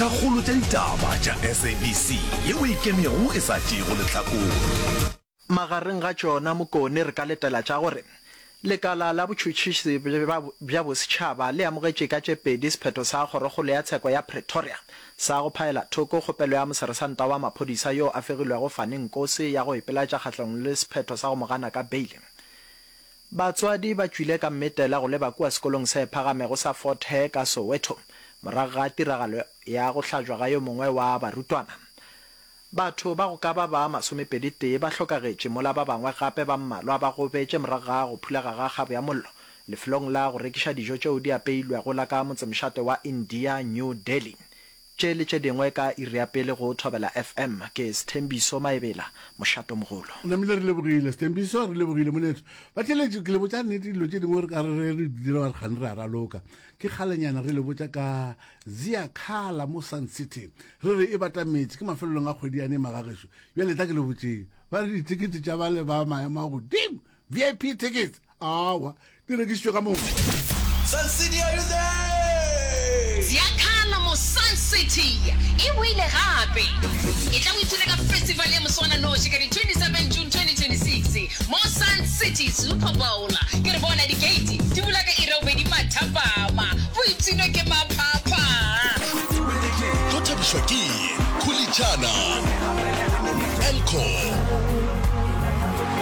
Tša kgolo tša ditaba tša SABC yeo e ikemego e sa tšeego lehlakore. Magareng ga tšona Mokone re ka letela tša gore lekala la botšhotšhisi bja bosetšhaba le amogetše ka tše pedi sephetho sa Kgorokgolo ya Tsheko ya Pretoria sa go phaela thoko kgopelo ya Moseresanta wa Maphodisa yo a fegilwego Fani Nkosi ya go ipelatša kgahlanong le sephetho sa go mo gana ka beile Batswadi ba tšwile ka mmetela go leba kua sekolong se phagamego sa Fort Hare ka Soweto morago ga tiragalo ya go hlajwa ga yo mongwe wa barutwana. Batho ba go ka ba ba masomepedi-tee ba hlokagetše mola ba bangwe gape ba mmalwa ba gobetše morago ga go phulaga ga kgabo ya mollo lefelong la go rekiša dijo tšeo di apeilwego la ka motsemšate wa India, New Delhi. Tše le tše dingwe ka iri ya pele go Thobela FM. Ke Sthembiso Maebela, mošato mogolo. O namile re lebogile. Sthembiso, re lebogile moneetho. Batheeletši, ke le botša nnete dilo tše dingwe re ka re re di dile wa re kgane re a raloka. Ke kgalenyana re le botša ka Ziakhala mo Sun City. Re re e batametše, ke mafelelong a kgwedi yane e magagešo. Bjale etla ke le botšeng. Ba re ditekete tša bale ba maemo a godimo. vip tickets awa di rekišitšwe ka moka Sun City, are you there? Ziakhala mo Sun City e boile gape. E tla o ithuta ka festival ya moswananoši ka di 27 June 2026 mo Sun City Super Bowl. Ke re bona dikeiti di bula ka iri ya bobedi mathapama, bo ipshinwe ke maphapha. Tlo thabišwa ke Khulitšana, Elcor,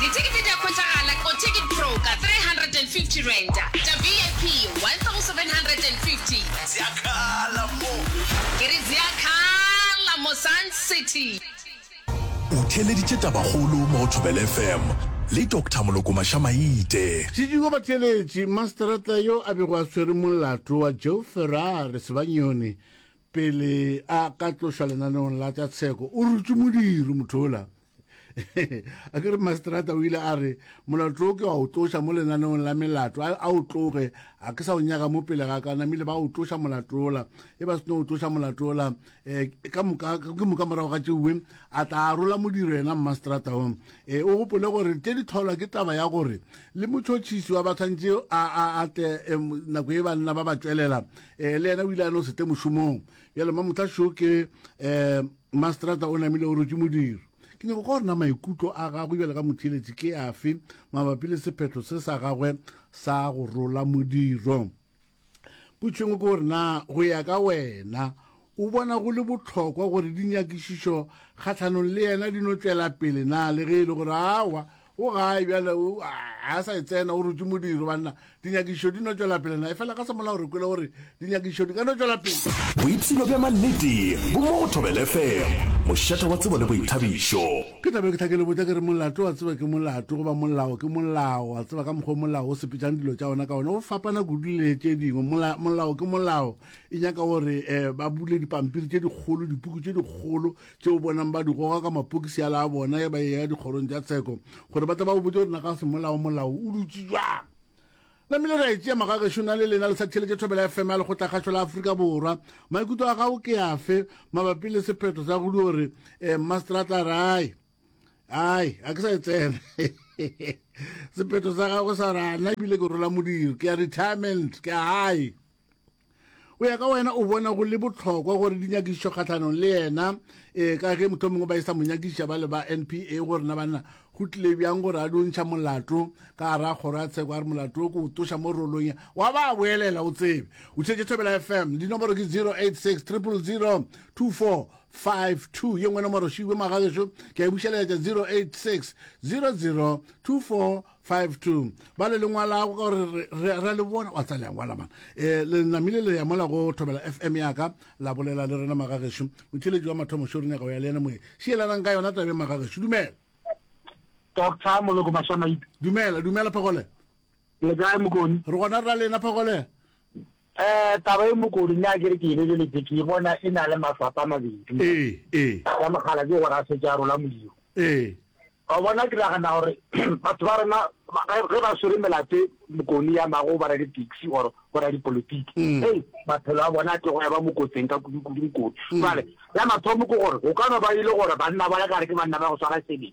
Dithekete di a hwetšagala ko Ticket Pro ka R350, tša VIP R1,750. Zia khala mo. Ke re zia khala mo Sun City. O theeleditše tabakgolo mo go Thobela FM le Doctor Molokomasha Maite. Sediko Batheeletši, Masterata yo a bego a swere molato wa Joe Ferrari Sebanyoni, Pele a ka tlošwa lenaneong la tša tsheko, o rutše modiri mothola a ke re masterata o ile a re molato o ke wa o tloša mo lenaneong la melato a o tloge a ke sa o nyaka mo pele ga ka namile ba o tloša molatola e ba seno o tloša molatola um eh, ka moka ke moka morago ga tšeuwe a tla rola modiro yena masterata o e o gopole gore tše di tholwa ke taba ya gore le motšhotšhisi wa bathantše a tle nako e banna ba ba tšwelela eh, le yena o ile a no sete mošomong bjale mamotlha šo ke um mastrata o namile o rotse modiro ke nyako ka gorena maikutlo a gagwe bjale ka motheeletsi ke afe mabapi le sephetho se sa gagwe sa go rola modiro potšhengwe ke gore na go ya ka wena O bona go le bohlokwa gore dinyakišišo kgahlanong le yena di no tšwela pele na le ge e le gore aowa o gae bjale o a a sa e tsena o rutše modiro banna dinyakišišo di no tšwela pele na efela ka semolao re kwele gore dinyakišišo di ka no tšwela pele Boipshino bja mannete bo mo go Thobela FM, mošata wa tsebo le boithabišo. Ke tla be ke tla ke le botša ke re molato wa tseba ke molato goba molao ke molao wa tseba ka mokgwa o molao o sepetšang dilo tša ona ka ona o fapana kudu le tše dingwe mola, molao ke molao. e nyaka gore um ba bule dipampiri tše dikgolo dipuku tše dikgolo tše o bonang ba di goga ka mapokisi a la bona ya ba e ya dikgorong tša tsheko gore ba tla ba o botse gore na ka semolao molao o dutse jwang namile ra etsea magagešo na le lena le sa theletše thobela ya fema ya lekgotlakgašo la aforika borwa maikutlo a gago ke afe mabapi le sephetho sa go di gore um mastrata rai ai a ke sa e tsena sephetho sa gago sa rana ebile ke rola modiro ke ya retirement ke a gae o ya ka wena o bona go le botlhokwa gore di nyakišišo kgatlhanong le yena um ka ge motho mongwe ba e sa mo nyakišiša ba le ba n p a gore na banna go tlile bjang gore a dio ntšha molato ka gara kgoro ya tsheko a re molato o ko o toša mo rolong wa ba boelela o tsebe o tšhetse thobela f m dinomoro ke 086 000 24 52 ye nngwe nomoro šiwe magagešo ke a e bušeletša 086 00 24 five two ba le lengwalago ka gore ra le bona wa tsa lengwala mana um eh, le namile le ya mola go thobela f m yaka la bolela le rena magagešu motheletši wa mathomo šo rinyaka o ya le ena moye šielanang ka yona tabe magagešu dumela doctor moloko mašamaite dumela dumela phagole le kae mokone re gona ra lena phagole Ee, taba e mokodu, nna ke re ke e lebeletše, ke e bona e na le maswapa a mabedi. Ee, ee. Sa mogala ke gore a se ke a rola modiro. Ee. Wa bona, ke nagana gore batho ba rena ge ge ba swere melato mokoni ya mago ba ra di-taxi or bo ra dipolitiki, hei, maphelo a bona a tlogo ya ba mokotseng ka kudukudu mokoni. Jwale ya mathomo ke gore go ka no ba e le gore banna ba le gare ke banna ba go swara sebele.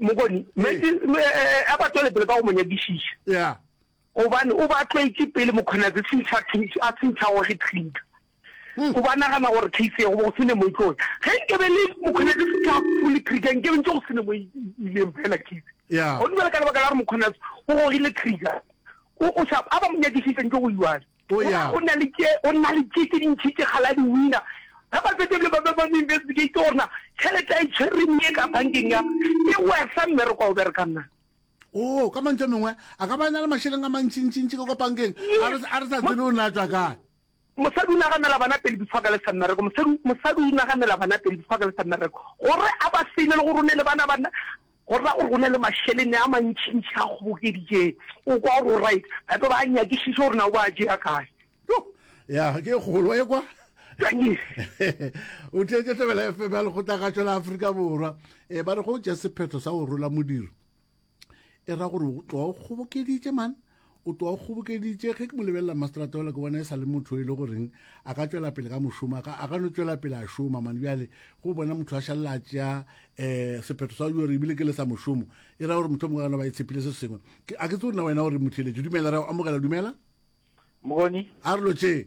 Mokoni, meetse a ba tswele pele ka go mo nyakišiša. Yeah. Gobane o ba tlwaetše pele Mokgonatse sentšha case a sentšha gore ge trinka. Hmm. O ba nagana gore case ya go go sene mo tlo. Ge nke be le Mokgonatse sentšha fully trigger nke be ntse go sene mo ileng fela case. Yeah. Go dibela ka lebaka la gore Mokgonatse o gogile trigger. O o sa a ba mo nyakišiša ntse go iwale. O ya. O na le tše, o na le tše tše dintši tše kgale a di wina. Ge ba fetša ebile ba be ba mo investigate gore na tšhelete a e tshwereng ye ka bankeng ya e wesa mmereko a o berekang na. Oo, ka mantšu a mengwe, a ka ba e na le mašeleng a mantšintšintši ka kwa bankeng a re a re sa tsebe o ne a tšwa kae. Mosadi o naganela bana pele before a ka lesa mmereko. Mosadi, mosadi o naganela bana pele before a ka lesa mmereko gore a ba save le gore o ne le bana ba na. Go ra gore go na le mašelene a mantšintši a kgobokeditšeng. O kwa gore o right? Ba tlo ba a nyakišiša gore na o ba a tšea kae. Yoh! Ya, ke e kgolo e kwa. o tletše tlebela fm ya lekgotlagatšo la aforika borwa e ba re go tša sephetho sa go rola modiro e ra gore tloa o kgobokeditše man o tloga o kgobokeditše ge ke mo lebelela mastrata ola ke bona e sa le motho e le goreng a ka tšwela pele ka mošomo a ka no tšwela pele a šoma mane bjale go bona motho a šalela a tšea um sephetho sa gore ebile ke le sa mošomo e ra gore motho mongwe gana ba e tshepile se sengwe a ke tse gore na wena gore motheletše dumela ra amogela dumela mokgoni a re lotšee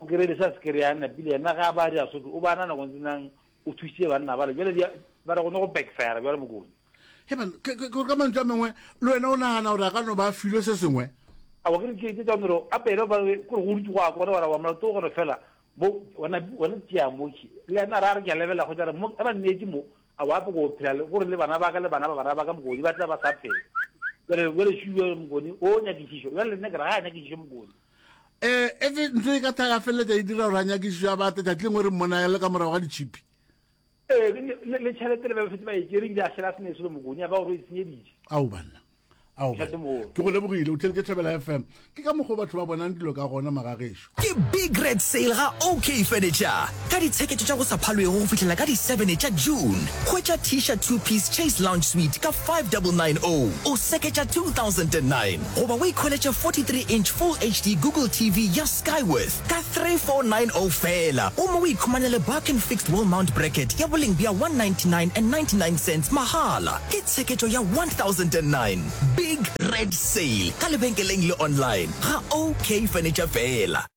O kerele sa se kere ya napile yena ga ba dia soto o ba na nako ntse nang o thusitse banna bale jwale dia ba re gone go backfire jwale mokone he ba ke ke ka mantša mengwe le wena o nagana gore a ka no ba filwe se sengwe a wa ke ke ke tsone ro a pele ba ke go rutse go a kore wa wa molato go re fela bo wana wana tsia mo ki le yena ra re ke lebela go tsara mo ba nne mo a wa go phela le gore le bana ba ka le bana ba bana ba ka mo go ba tla ba sa phela jwale jwale shuwe mokone o nyakisišo jwale nne ke ra ga nyakisišo mokone e etse ntlo e ka tla ya feleletša e dira gore a nyakišišo ya bate tšatši lengwe re mmona le ka morago ga ditšhipi ee le tšhelete le ba befetse ba e kere ebile a šela sene se le mokonya ba gore o e senyeditše ao banna ao ke go lebogile o tlheditše tlhabela fm ke ka mokgwa batho ba bonang dilo ka gona magagešo ke big red sale ga okay furniture ka ditshekete tša go sa phalwego go fihlela ka di 7 tša June. Hwetša Tisha Two Piece Chase Lounge Suite ka 5990 o seketša 2009 goba o ikhweletše 43 inch Full HD Google TV ya Skyworth ka 3490 feela gomme o ikhumanele Barkin Fixed Wall Mount Bracket ya boleng bja 199.99 mahala. Ke tsheketšo ya 1009. Big Red Sale ka lebenkeleng le online ga OK Furniture feela.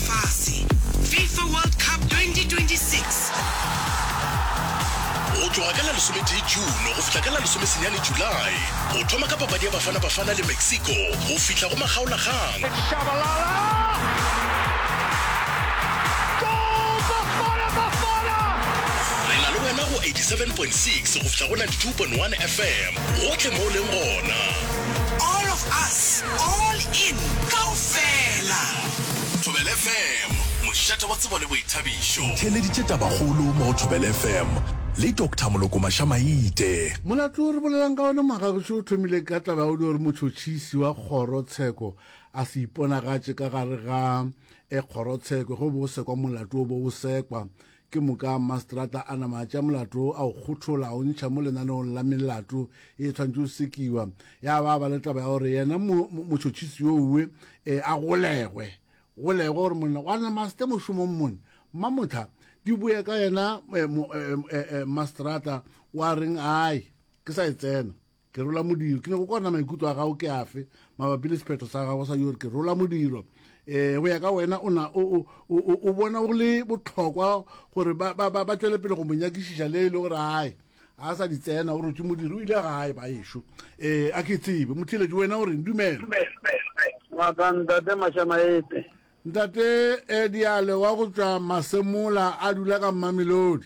fase. Fifa World Cup 2026. Go tloga ka la lesometee June go fihla ka la lesomesenyane July, go thoma ka papadi ya Bafana Bafana le Mexico go fihla go makgaolakgang, It's Shabalala! Goal! Bafana Bafana! re na le wena go 87.6 go fihla go 92.1 FM gohle mo o leng gona. All of us, all in, kaofela! Thobela FM, mošate wa tsebo le boithabišo. Theeleditše tabakgolo mo go Thobela FM le Doctor Moloko Maša-Maite. Molato o re bolelang ka wona Moagagišo o thomile ka taba ya go dira gore motšhotšhisi wa kgoro tsheko a se iponagatše ka gare ga kgorotsheko ge o be o sekwa molato o bo o sekwa Ke moka Mmaseterata a nama a tšea molato a o kgothola a o ntšha mo lenaneong la melato e e tshwanetše o sekiwa, ya ba ba le taba ya gore yena mo, mo, motšhotšhisi yo uwe e, a golegwe, golegwe gore monna wa nama a se tle mošomong mone. Mmamothla, di boya ka yena e, mo, e, e, e, Mmaseterata wa reng, Ai, ke sa e tsena. Ke rola modiro. Ke nyako kwana maikutlo a gago ke afe mabapi le sephetho sa gago sa yore ke rola modiro. Eh, go ya ka wena o na o o o o bona go le botlhokwa gore ba ba ba tšwele pele go monyakišiša le ile gore hae a sa di tsena o rotše modiri o ile gae ba ešo eh a ke tsebe motheletši wena o reng dumela ngaka ntate mashamaete ntate eh, diale wa go tšwa masemola a dula ka mmamelodi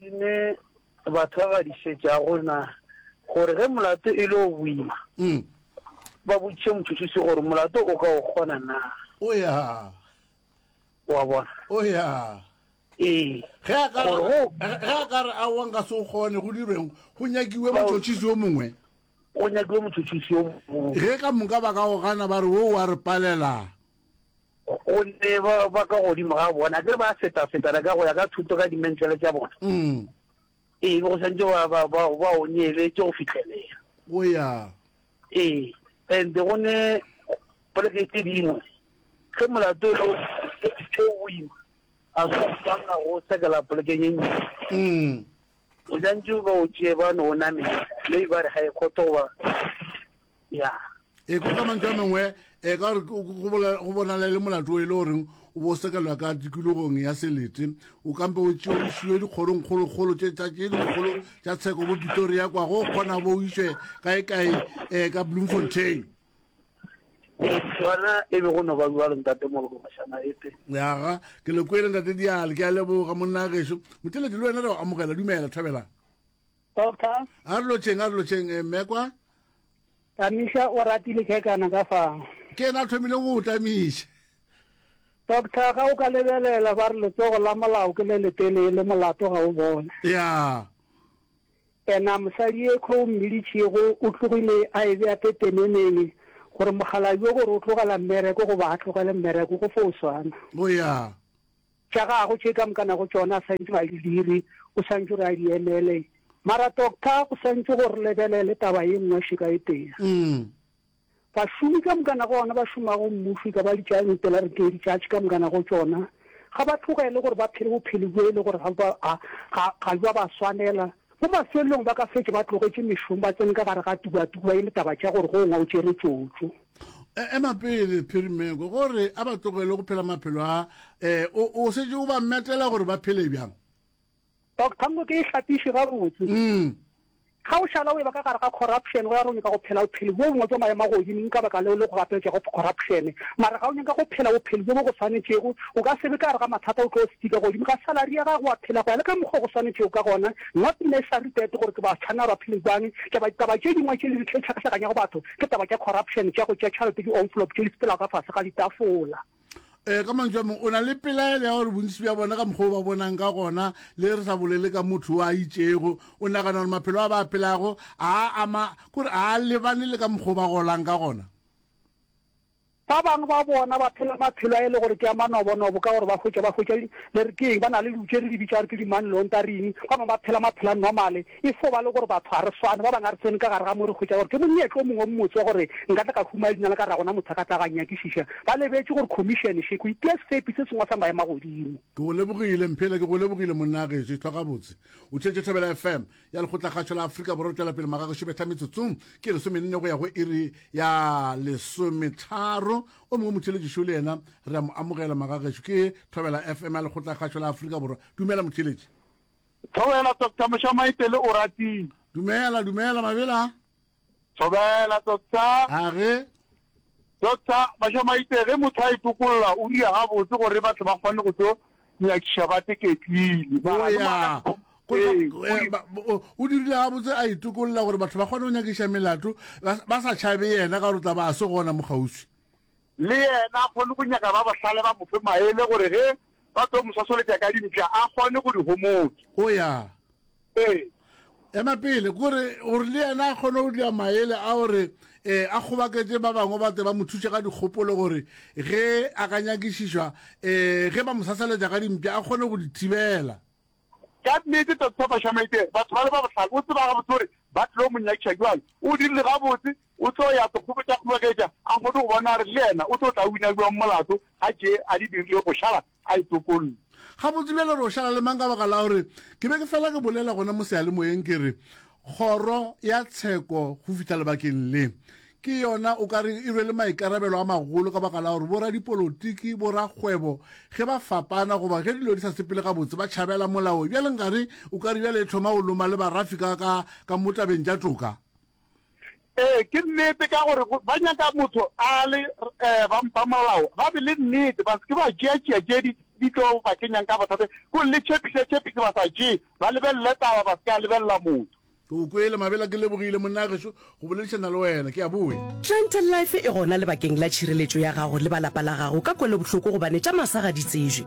Ke ne ba tshwagadišetša go na gore ge molato e le o boima, ba botšiše motšhotšhisi gore molato o ka o kgona na. O ya. Wa bona? O ya. Ee. Ge a ka Gore go- ge a ka re aowa nka se o kgone go dirweng go nyakiwe motšhotšhisi yo mongwe. Go nyakilwe motšhotšhisi yo mongwe. Ge ka moka ba ka o gana ba re wo wa re palela. gonne ba ka godimo ga bona a kere ba feta-fetana ka go ya ka thuto ka dimentlele tša bona mm. ee go santse ba onyele tse go fitlhelela o ya ee and go ne poleke tse dingwe ge molato e o boima a swanna go sekela polekeng e ntsi mm. o santse ba o tšee ba ne o namele mme ba re ga e kgotho goba ya e ko ka mantse a mengwe e ka gore go bonala e le molato e le goreng o bo sekelwa ka tikologong ya selete o kampe o tšeo o siwe dikgolongkgolokgolo tše tsa tše dikgolo tša tsheko bo pitoria kwa go kgona bo o iswe kae kae um ka bloemfontein sona e be go no ba bua le ntate mologo mashana ete yaga ke le kwele ntate diale ke a leboga monna geso moteledi le wena re go amogela dumela thabela Doctor. A re lotšeng, a re lotšeng, eh, mme kwa. Tamiša o ratile kekana ka fa. Ke ena a thomile go o tamiša. Doctor, ga o ka lebelela ba re letsogo la molao ke le letelele, molato ga o bone. Ya. Ena mosadi e kho o mmilitšego o tlogile a e bea pepeneneng gore mokgalabi o gore o tlogela mmereko goba a tlogele mmereko go fo o swana. O ya. Tša gagwe tše ka moka nago tšona a santšwe a di dire, o santšwe re a di emele. Mara doctor go santšwe go re lebelele taba ye nngwe šeka e tee. Bašomi ka moka nago ona ba šomago mmušo e ka ba ditšaeng pela re tee ditšatši ka moka nago tšona ga ba tlogele gore ba phele bophelo bjo e le gore ga, ga, ga, ga jwa ba swanela. Mo mafelelong ba ka fetša ba tlogetše mešomo ba tsene ka gare ga tubatuba e le taba tša gore go ngwa o tšere tšotšo. E, ema pele Phirimeko, gore a ba tlogele go phela maphelo a e, o, o setse o ba metela gore ba phele bjang. Doctor Mbo ke e hlapiše gabotse. Mm. Ga o šala o eba ka gare ga corruption go ya go nyaka go phela bophelo bjo bongwe bja maemo a godimo ka baka leo le go gapetša go corruption. Mara ga o nyaka go phela bophelo bjo bo go swanetšego O ka se be ka gare ga mathata, o tlo sticker godimo ga salary ya gago, wa phela go ya le ka mokgwa go swanetšego ka gona. Nna pina e sa retate gore ke ba tshwanela ba phele bjang. Taba ditaba tše dingwe tše le di tlhakahlakanyago batho ke taba tša corruption, tša go tša tšhalete, di envelope tše di sepelago ka fase ga ditafola. Eh, ka mantswe a mangwe o na le pelaelo ya gore bontsi bja bona ka mokgwa o ba bonang ka gona le re sa bolele ka motho wa itšego o nagana gore maphelo a ba a phelago a ama kore a lebane le ka mokgwa o ba golang ka gona Ba bangwe ba bona ba phela maphelo a e le gore ke a manobonobo ka gore ba hwetša ba hwetša le re keng ba na le dilo tše re di bitša gore ke di-money laundering. Ba bangwe ba phela maphelo a normal e fo ba le gore batho ga re swane. Ba bangwe ga re tsene ka gare ga mo re hwetša gore ke monyetla o mongwe o mmotse wa gore nka tla ka humaya leina la ka ragona motho a ka tla ga nyakišiša. Ba lebetše gore khomišene še go itia sefepi se sengwe sa maemagodimo. Ke go lebogile Mphela. Ke go lebogile monna Gešo. Ithwa gabotse. O theetše Thobela FM. ya lekgotlakgašo la afrika borwa tšwela pele magago šebetla metsotsong ke lesomenne go ya go iri ya lesometharo o mongwe motšheletšišo le yena re a mo amogela magagešu ke thobela fm ya lekgotlakgašo la afrika borwa dumela motšheletši thobela doctor mošamaipele o ratile dumela dumela mabela Thobela, Doctor. A ge? Doctor, Mašamaitse, ge motho a itokolola o dira gabotse gore batho ba kgone go tlo nyakiša ba teketlile. O ya. O dirile gabotse a itokolola gore batho ba kgone go nyakiša melato ba sa tšhabe yena ka gore tla ba a se gona mo kgauswi. Le yena a kgone go nyaka ba bohlale ba mo fe maele gore ge ba tlo mo sosoletša ka dimpša a kgone go di homotsa. O ya. Ee. Ema pele, gore gore le yena a kgone go dira maele a gore e a kgobaketše ba bangwe ba tle ba mo thuše ka dikgopolo gore ge a ka nyakišišwa e ge ba mo sasaletša ka dimpša a kgone go di thibela. Ka nnete, Doctor Basha Maite, batho ba le ba bohlale, o tseba gabotse gore ba tlilo mo nyakiša. Bjale o dirile gabotse, O tlo ya sekgobetšakgobogetša a kgone go bona gore le yena o tlo tla wina bjang molato ga tše a di dirile go šala a e tokolle. Gabotse bjale re o šala le mang ka baka la gore ke be ke fela ke bolela gona mo seyalemoyeng ke re kgoro ya tsheko go fihla lebakeng le ke yona o ka re e rwele maikarabelo a magolo ka baka la gore boradipolotiki, borakgwebo ge ba fapana goba ge dilo di sa sepele gabotse ba tšhabela molao bjale nkare o ka re bjale e thoma go loma le barafi ka ka ka mo tabeng tša toka. Ee, ke nnete ka gore ba nyaka motho a le eh, ba mpa molao ba be le nnete ba seke ba tšeatšea tše di di tlo ba kenyang ka bothata ko le tšhepisa tšhepise ba sa tšee ba lebelele taba ba se ka lebelela motho ke o kwele mabela ke lebogile monna gešo go boledišana le wena ke a boe Gentle Life e gona lebakeng la tšhireletšo ya gago le ba lapa la gago ka kwelobohloko gobane tša masa ga di tsejwe.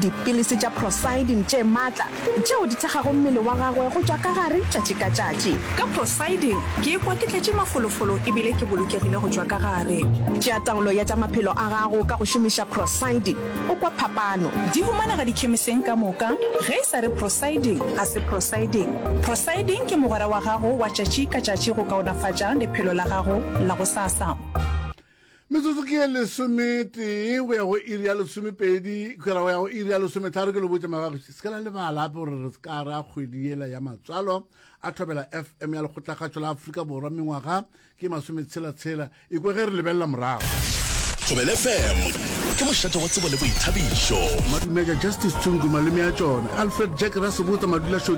Dipilisi tša prosidin tše matla tšeo di thekgago mmele wa gagwe go tšwa ka gare tšatši ka tšatši. Ka prosidin ke ikwa ke tletše mafolofolo e bile ke bolokegile go tšwa ka gare. Tšea taolo ya tša maphelo a gago ka go šomiša prosidin, o kwa phapano. Di humanega dikhemiseng ka moka. Ge e sa re prosidin, ga se prosidin. Prosidin ke mogwera wa gago wa tšatši ka tšatši go kaonafatša lephelo la gago la gosasa. Metsotso ke ye lesometee go ya go iri ya lesomepedi kgera go ya go iri ya lesometlharo ke lo botša magagoši se ka la lebala ape gore re se ka ra kgwedi yela ya matswalo a thobela fm ya lekgotlakgatšo la aforika borwa mengwaga ke masometshela-tshela ikwe ge re lebelela morago thobela fm ke mošate wa tsebo le boithabišo madumeja justice tsungu maleme ya tšona alfred jack rasebotsa madula